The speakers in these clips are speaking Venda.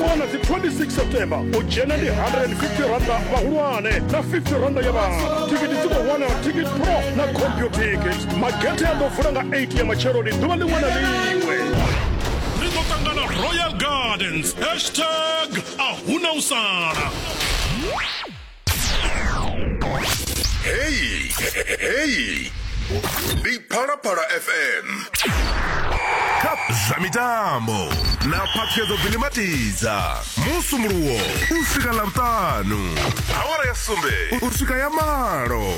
wana dzi 26 september u dzhena ndi 150 randa vhahulwane na 50 randa ya vhana tikiti dzi khou wanala ticket pro na computicket magethe a ḓo vula nga 8 ya matsheloni ḓuvha ḽiṅwe na ḽiṅwe ri ḓo ṱangana royal gardens hashtag a huna u sala Hey, hey. Ndi Phalaphala FM. Cup zwa mitambo na phaṱhuyedzo dzilimatidza musumuluwo u swika ḽavhuṱanu awara ya sumbe u swika ya malo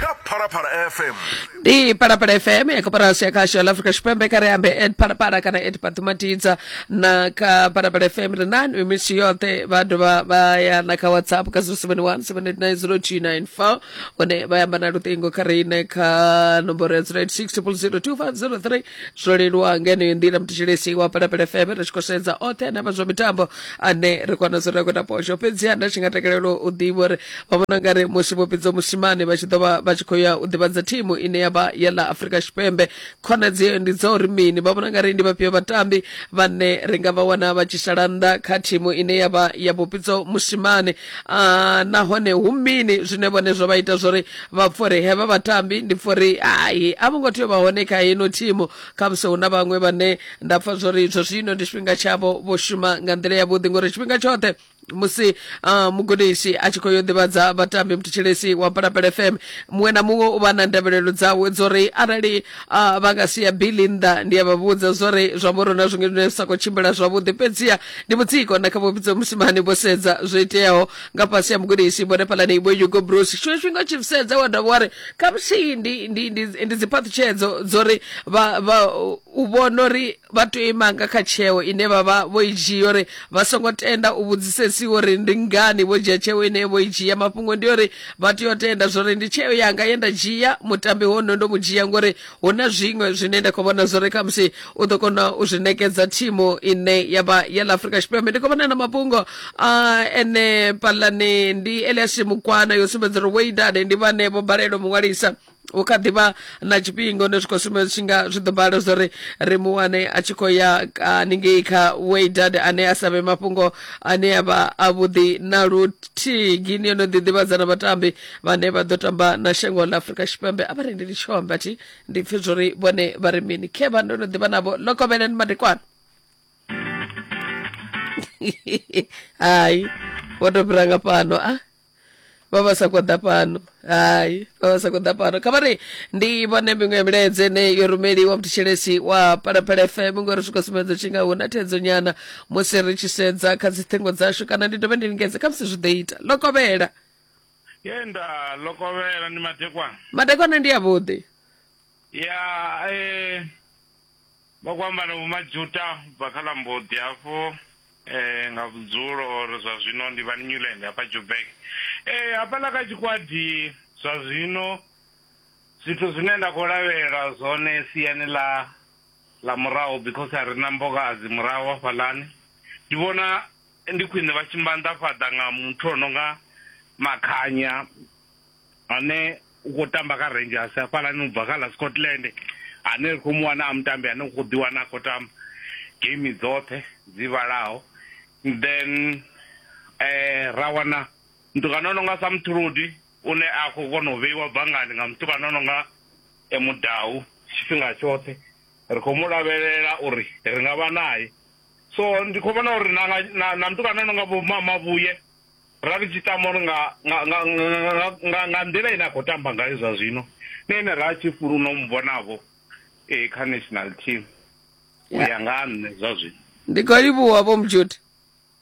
kha phalaphala fm ndi parapara fm ya koporasi ya khasho ya africa tshipembe kare ambe ed parapara kana ed patumatidza na kha parapara fm ri nani mimisi yoṱhe vha dovha vha ya na kha whatsapp ka 0717890294 hone vha yamba na luṱingo kha riṋe kha nomboro ya 086 002 503 zwo leluwa nga yeneyo nḓila mthetshelesi wa phalaphala fm ri tshi khou sedza oṱhe ane avha zwa mitambo ane ri kona zwo ri a khou ita posho fhedziha nda tshi nga takalela u ḓivha uri vha vhona nga ri musi vho fhedza musimane vha tshi ḓo vha vha tshi khou ya u ḓivhadza thimu ine ya vha ya ḽa afurika tshipembe khonadzeo ndi dza uri mini vha vhona nga ri ndi vhafhio vhatambi vhane ri nga vha wana vha tshi sala nnḓa kha thimu ine ya vha ya vhuphidzo musimane uh, nahone hu mini zwine vhone zwo vha ita zwori vha pfha uri hevha vhatambi ndi pfha uri hai a vho ngo tea u vha hone kha heno thimu khamusi hu na vhaṅwe vhane nda pfha zwori izwo zwino ndi tshifhinga tshavho vho shuma nga nḓila yavhuḓi ngori tshifhinga tshoṱhe musi uh, mugudisi a tshi khou yo ḓivhadza vhatambi muthetsheleisi wa palapele fm muṅwe na muṅwe u vha na ndavhelelo dzawe dzori arali uh, vha nga sia bili nnḓa ndi a vha vhudza zwori zwa vhorona zwiṅwe zwine sa khou tshimbila zwavhuḓi fhedziha ndi mutsiko na kha vhupfidzo musimani vho sedza zwo iteaho nga fhasi ya mugudisi vhone phalani ibo hugo bruce tshiṅwe tshifhinga tshi sedza wa dovha wa ri khamusi ndi, ndi, ndi, ndi dziphaṱhutshedzo dzo ri vha, vha, u vhona uri vha tea u ima nga kha tsheo ine vha vha vho i dzhia uri vha songo tenda u vhudzisesiwa uri ndi ngani vho dzhia tsheo ine vho i dzhia mafhungo ndi uri vha tea u tenda zwori ndi tsheo yanga ye nda dzhia mutambi hono ndo mu dzhia ngori hu na zwiṅwe zwine nda khou vhona zwo ri khamusi u ḓo kona u zwi nekedza thimu ine ya vha ya ḽa afurika tshipembe ndi khou vhona na mafhungo a ene palani ndi elias mukwana yo sumbedza uri weidade ndi vhane vho balelwa muṅwalisa hu kha ḓivha na tshifhingo ne zwi khou sumbedza tshi nga zwi ḓo bala zwo ri ri mu wane a tshi khou ya haningei kha weidade ane a sa vhe mafhungo ane a vha avhuḓi na luthihi gini yo no ḓiḓivhadza na vhatambi vhane vha ḓo tamba na shango ḽa afurika tshipembe a vha rendi ndi tshio amba thi ndi pfe zwori vhone vha ri mini khevha ndo no ḓivha navho lokovheleni madekwana hayi vho to fhira nga fhano a ah? vha vha sa khou ḓa fhano hayi vha vha sa khou ḓa fhano kha vhari ndi vhone miṅwe ya milaedze ine yo rumeliwa muthetshelesi wa phalaphala fm ngori zwi khou sumbedza tshi nga hu na thedzo nyana musi ri tshi sedza kha dziṱhingo dzashu kana ndi dovhe ndi lingedze kha musi zwi ḓo ita ḽo kovhela ye nda lokovhela ndi matekwana matekwana ndi avhuḓi ya eh, vha khou amba na vhomajuta bva kha ḽa mboḓi hafho eh, nga vhudzulo or zwa zwino ndi vha newland hafha jubek eh, hafhaḽa kha tshikwadi zwa zwino zwithu zwine nda khou lavhelela zwone siani ḽa ḽa murahu because a ri na mbokadzi murahu hafhaḽani ndi vhona Ndi khwine vha tshi maanḓafhadza nga muthu o no nga Makhanya ane u khou tamba kha Rangers hafhaḽani u bva kha ḽa Scotland ane ri khou mu wana a mutambi ane u khou ḓiwana a khou tamba geimi dzoṱhe dzi vhalaho. Then ra wana mutukana o no nga Samthrudi u ne a khou kona u vheiwa bangani nga mutukana o no nga Mudau tshifhinga tshoṱhe. Ri khou mu lavhelela uri ri nga vha nae so ndi khou vhona uri na na na mutukana no nga vho mamavhuye ra ri tshi tamba uri nga nga nga nga nga nḓila ine a khou tamba ngayo zwa zwino na ene ra tshi fulu no mu vhonavho eh kha national team u ya nga nṋe zwa zwino ndi khou livhuwa vho mujudi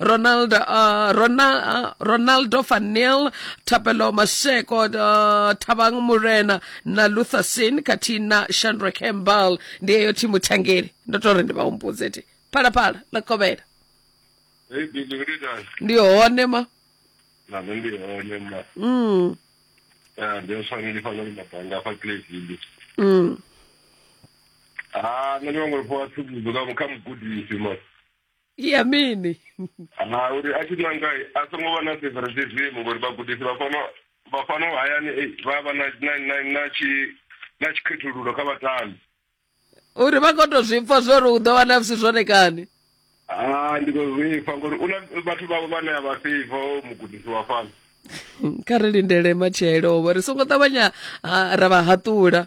ronald uh, ronald uh, ronaldo fanil thapelo masheko uh, thabang murena na luther sin khathihi na shandra campbell ndi eyo thimu thangeli ndo to ri ndi vha humbudze ti phalaphala ḽa kovhela Hey, Billy, what are you doing? ndi hone ma Na nṋe ndi hone ma. mm, Eh, ndi uswana ndi fana ndi mabanga afha Clayville. mm. Ah, nṋe ndi vhangori fho a tsivhudzo kha kha mugudisi ma. ya mini ha uri a tshi nanga a songo vha na favoritism ngori vhagudisi vha fano vha fano hayani eh, vha vha na na na na tshi na tshikhethululo kha vhatambi uri vha koto zwi pfa zwo ri u ḓo wana vsi zwone kani ha ndi khou zwi pfa ngori una vhathu vhavho vhane a vha feiva mugudisi wa fano kha ri lindele matshelo vho ri songo ṱavhanya ah, ra vha haṱula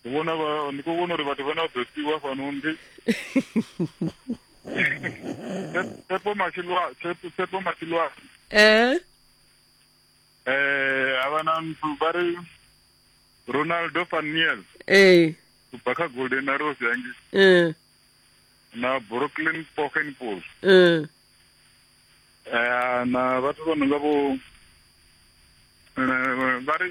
ndi vhona vha ndi khou vhona uri vhathu vhane vha ḓo siiwa fhano ndi tshepo matshilwa tshepo matshilwa eh eh avha na nthu vha ri ronaldo faniel eh ubva kha golden arrows yangi eh na brooklyn pokenpol eh eh na vhathu vha no nga vho eh, vha ri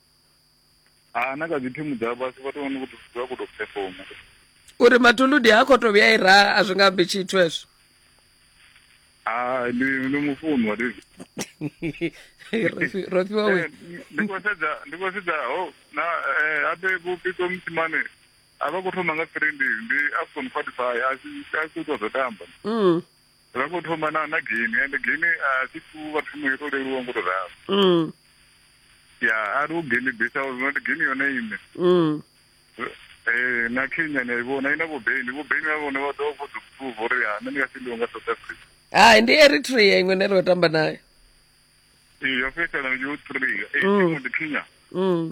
ha na kha dzi thimu dza fhasi vhathu vha no khou tou vha khou tou performa uri matuludi ha khou tou vhuya i ra a zwi nga ambi tshithu hezwo ndi ndi mufuni wa david ro fhiwa we eh, ndi khou sedza ndi khou sedza ho oh, na eh, abe vhupito musimane a vha khou thoma nga three ndi ndi afcon qualify a si a si tou zwo tamba mm. Ra khou thoma na na game ende game a si thu vha thumo yo to leluwa ngo to ralo. Mm. Ya a ri u game base house not game yone ine. Mm. Eh na Kenya ni i vhona ina vho Beni vho Beni vha vhone vha ḓo vho ḓo prove uri ya nṋe ndi nga si ndi nga South Africa. Hai ndi Eritrea iṅwe ne ro tamba nayo. Ee yo fhedzisela yo 3 eh Mm. ndi Kenya. Mm.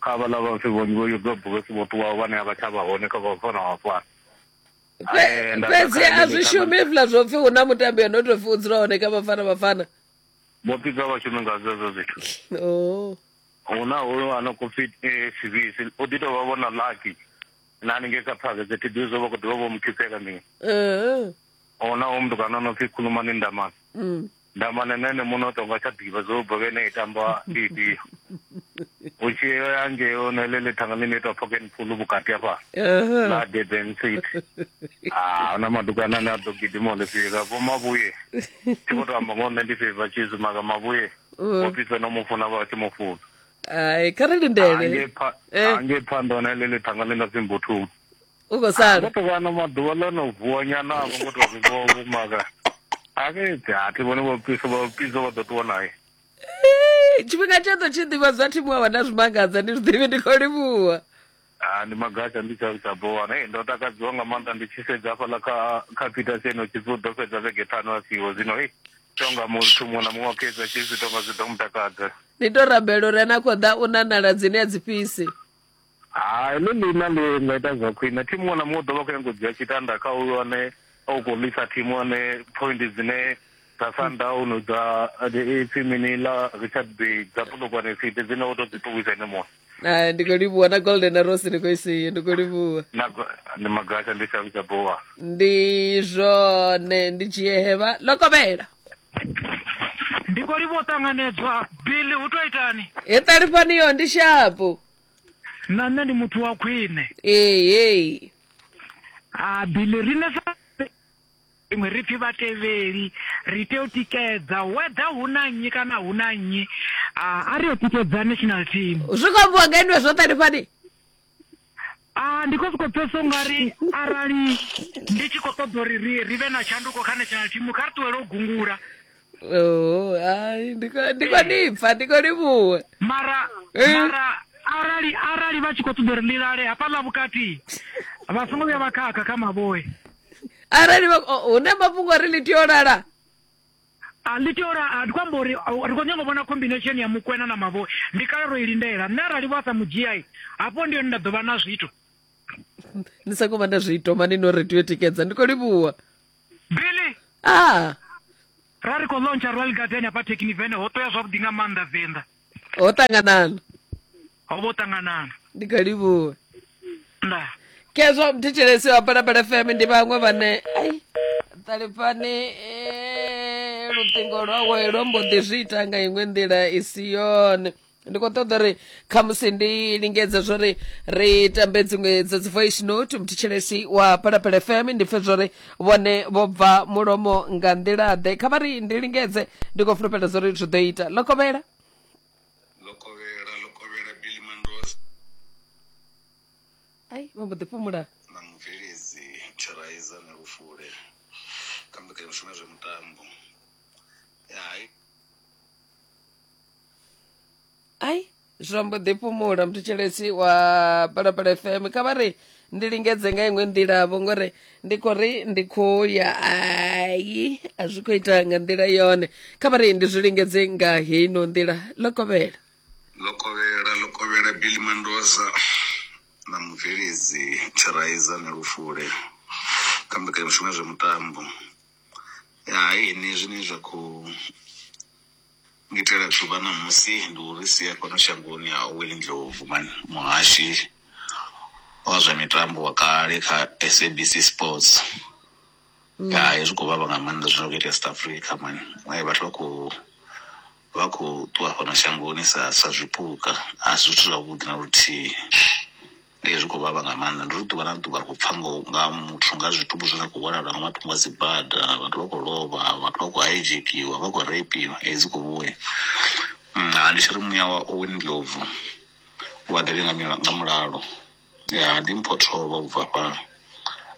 Kha havhaḽa vhafi vhonzhi vho yodza bulasi vho ṱuwaho vhane a vha tsha vha hone kha vha fana vha fana fhedzi a zwi shumi hezwiḽa zwo pfhi hu na mutambi yo no tou pfhi u dzula hone kha vhafana vhafana vho pika vhashumi nga zwezwo zwithu oh. hu na hoyo a no khou pfhi eh, sivisi u ḓi tou vha vhona laki na haningei kha phakete thi ḓivhi zwo vha khou ḓivha vho mu khisela mini hu na hoyo mutukana o no pfhi khulumani ndamana mm. Ndamane nṋe ene muṋe o tonga tsha ḓivha zwo ubva vhene i tamba ndi ifhio u tshi ya ngei ono ḽe ḽe thanga ḽine itwa pocket pool vhukati afha na durban city a ah, huna madukana ane a ḓo gidima o ḽifhika vho mavhuye tshi vho tou amba ngo nṋe ndi feiva tshizu maka mavhuye vho mm. pifhe no mu funa vha tshi mu funa ai kha ri lindele angei phanḓa one ḽe ḽe thanga ḽi na pfi mbuthuni u khou sala ndo to vha na maḓuvha ḽo no vuwa nyana a vho ngo to ri vho vho maga a ke ti a ti vhone vho piso vho piso vha ḓo ṱuwa naye tshifhinga tshe ḓo tshi ḓivha zwa thimu wa wana zwimangadza ndi zwiḓivhi ndi khou livhuwa Ah, ndi magatsha ndi tsha tsha bowana hey ndo takadziwa nga maanḓa ndi tshi sedza hafhaḽa kha kha peter seno tshipfi u ḓo fhedza vhege ṱhanu a siho zwino hey tonga muthu muṅwe na muṅwe wa khetsa tshipfi tonga zwi ḓo mu takadza ndi to rabela uri ana khou ḓa u nanala dzine a dzi fhisi Hai, heḽo ḽiina ḽi nga ita zwa khwine. Thimu muṅwe na muṅwe u ḓo vha khou nyanga u dzhia tshitanda kha uyo ane a u khou ḽisa thimu ane phoindi dzine dza Sundown dza ipfi mini ḽa Richard Bay dza Polokwane City dzine wo tou dzi ṱuwisa ene muṅwe. Ah, ndi khou livhuwa na golden arrows ni khou i siyo ndi khou livhuwa Na ndi magasha ndi shavhu tsha bowa. ndi zwone ndi dzhie hevha ḽo kovhela ndi khou livha u ṱanganedzwa billy hu tou itani he ṱalifhani yo ndi shapu na nṋe ndi muthu wa khwine ehe a billy riṋe sa iṅwe ri pfi vhatevheli ri tea u tikedza whether hu na nnyi kana hu na nnyi a a ri yo tikedza national team zwi khou ambiwa nga inwe zwo ṱalifhani Ah, ndi khou sokou pfesa ungari arali ndi tshi khou ṱoḓa uri ri ri vhe na tshanduko kha national team kha ri ṱuwele u gungula Oh, ai, ndi khou- ndi khou ni pfa ndi khou livhuwa mara Eh. mara arali arali vha tshi khou ṱoḓa uri ḽi lale hafhaḽa vhukati vha songo vhuya vha khakha kha mavhoe arali vha- oh, hu na mafhungo ri ḽi tea u lala A ḽi tea uri a ndi khou amba uri ri khou nyanga u vhona combination ya mukwena na mavhoi. Ndi kale ro i lindela. Nṋe arali vho a sa mu dzhia hafho ndi hone nda ḓo vha na zwithu. Ni sa khou vha na zwithu mani no ri tea tikedza. Ndi khou livhuwa. Billy. Ah. Ra ri khou launcher Royal Garden hafha Thekinivene ho ṱoya zwavhuḓi nga maanḓa Venḓa. ho ṱanganana ho vho ṱanganana ndi kha livhuwe nda kezwo mthetshelesi wa balabala fm ndi vhaṅwe vhane ai ṱalifhani eh, luṱingo lwawe lwo mbo ḓi zwi ita nga iṅwe nḓila i si yone ndi khou ṱoḓa uri khamusi ndi lingedze zwo ri ri tambe dziṅwe dza dzi voice note mthetshelesi wa balabala fm ndi pfe zwo ri vhone vho bva mulomo nga nḓila-ḓe kha vha ri ndi lingedze ndi khou fulufhela zwo ri zwi ḓo ita lokovhela lokovhela lokovhela billy mandoza ai vha mbo ḓi fhumula na mubveledzi tshiraiza na lufule kha mbekanyamushumo ya zwa mitambo ya hai ai zwa mbo ḓi fhumula mthetshelesi wa palapala fm kha vha ri ndi lingedze nga iṅwe nḓila vho ngori ndi khou ri ndi khou ya ai a zwi khou ita nga nḓila yone kha vha ri ndi zwi lingedze nga heino nḓila ḽo kovhela ḽo kovhela ḽo kovhela billy mandoza na mubveledzi tshiraiza na lufule kha mbekanyamushumo ya zwa mutambo ya hai henezwi ne zwa khou Ngitela dzuvha ṋamusi ndi u ri sia fhano shangoni ha Owen Ndlovu, muhashi wa zwa mitambo wa kale kha SABC sports hai zwi khou vhavha nga maanḓa zwine zwa kho itea South Africa mani vhathu vha kho vha kho ṱuwa fhano shangoni sa sa zwipuka asi zwithu zwavhuḓi na luthihi. Ee, zwi khou vhavha nga maanḓa ndi uri ḓuvha na ḓuvha ri khou pfha ngo nga muthu nga zwitumbu zwine zwa khou vhonala nga matungo a dzibada. Vhathu vha khou lovha vhathu vha khou hadzhekiwa vha khou reipiwa ee dzi khou vhuya. Mara ndi tshiri muya wa Owen Ndlovu u a ḓivhea nga mila nga mulalo ya ḓi mpho thovho ubva hafha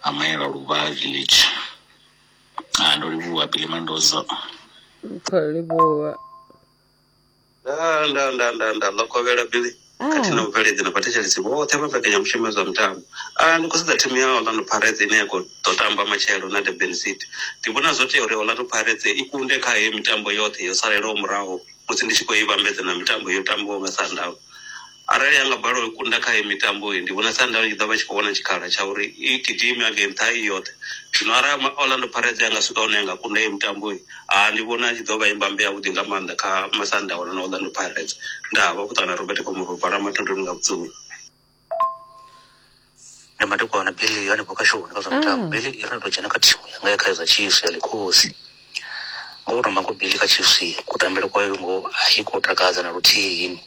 ha mayela luvha village. Ndo livhuwa Billy Mendoza. Ri khou livhuwa. nda nda nda nda nda ḽokovhela bili Ah. khathihi na vhubveledzi na vhathetshelesi vhoṱhe vha mbekanyamushumo ya zwa mitambo a ndi khou sedza thimu ya orlando pirates ine ya khou ḓo tamba matshelo na durban city ndi vhona zwo tea uri orlando pirates i kunde kha heyo mitambo yoṱhe yo salelaho muraho musi ndi tshi khou i vhambedza na mitambo yo tambiwaho nga sundowns Arali ha nga balelwa u i kunda kha heyi mitambo iyi, ndi vhona Sundowns i tshi ḓo vha i tshi khou wana tshikhala tsha uri i gidime hangei nṱha i yoṱhe. Zwino arali ma, Orlando Pirates ya nga swika hune ya nga kunda heyi mitambo iyi, ha ndi vhona i tshi ḓo vha i mbambe yavhuḓi nga maanḓa kha Masandawana na Orlando Pirates. Ndaa, vha khou ṱangana na Robert Komoropa, Ramathondoni nga vhudzula. ndi madekwana bili yo hanefho kha shoni kha zwa mitambo mm. bili i ri to dzhena kha thimu yanga ya kha za chiefs ya likhosi ngo u tamba ngo bili kha chiefs kutambele kwayo ngo a i khou takadza na luthihi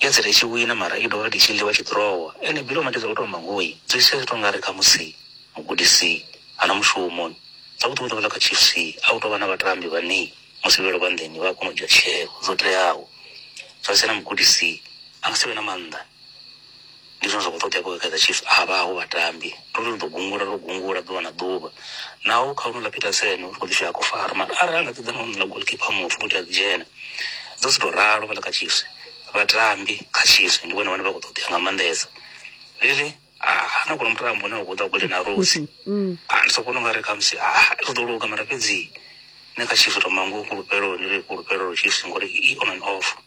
i dzela i tshi wina mara i dovha i tshi ḽiwa tshi ḓirowa ene bili o matidza u toma ngoi zwi sia zwi to nga ri kha musi mugudisi ana mushumo a u ṱuṱuwedza kha chiefs a u tovha na vhatambi vhane musi vhelo vha nḓeni vha kona u dzhia tsheo zwo teaho zwa sena mugudisi a nga si vhe na maanḓa ndi zwine zwa khou ṱoḓea kha kaizer chiefs a vha ho vhatambi ndo ri ri ḓo gungula ro gungula ḓuvha na ḓuvha naho kha honouḽa petersen uri kho ḓi shaya kho fara mara arali anga ṱoḓa na honouḽa golkipa mufu kuti a ḓi dzhena dzo si to ralo vhala kha chiefs vhatambi kha chiefs ndi vhone vhane vha khou ṱoḓea nga maanḓesa really ha na kuno mutambo une wa khou ḓa kule na rosi a ndi sokona unga ri khamusi ri ḓo luga mara fhedzi nṋe kha chiefs to mangu fhulufhelo ndi ri fhulufhelo chiefs ngori i on and off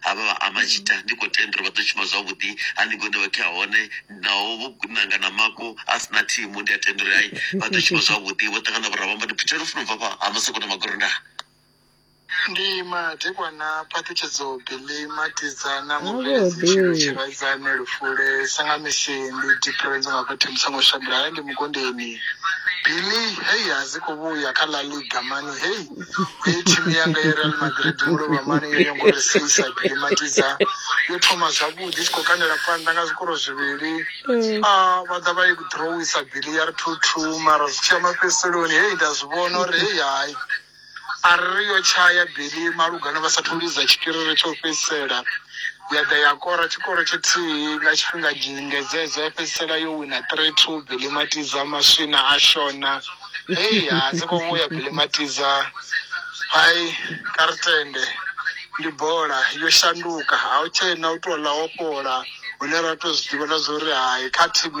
ha vha vha Amashita, ndi khou tenda uri vha ḓo shuma zwavhuḓi haningei hune vha kha hone, naho vho nanga na mafhu a si na thimu, ndi a tenda uri hai vha ḓo shuma zwavhuḓi, vho ṱangana vho ramba ndi phutshela funa ubva fha ha masoko na magorondana. Ndi madekwana phaṱhutshedzo Billy Matiza na mubveledzi Tshilo Tshiradzane Lufule sanga misi ndi difference nga fhethu ndi songo shandula ndi mukondeni Billy hey a zwi kho vhuya kha La Liga mani hey hei thimu yanga yereal madrid ndo lovha mani yo nyanga uri seisa gilimatiza yo thoma zwavhuḓi tshi khou kandela phanḓa nga zwikoro zwivhili mm. a ah, vha ḓa vha i drowisa bili ya ri two two mara zwi tshiya mafhedziseloni hei nda zwi vhona uri hei hai a ri yo tshaya bili malugana vha sathu lidza tshipiriri tsho fhedzisela ya ḓa ya kora tshikoro tshithihi nga tshifhinga dzingedzedzo ya fhedzisela yo wina three two bili matiza maswina a shona hei ha dzi khou vhuya kilimatiza hai kha ri tende ndi bola yo shanduka a u tshena u tou ḽa wo fhola hune ra tou zwi ḓivha na zwa uri hai kha thimu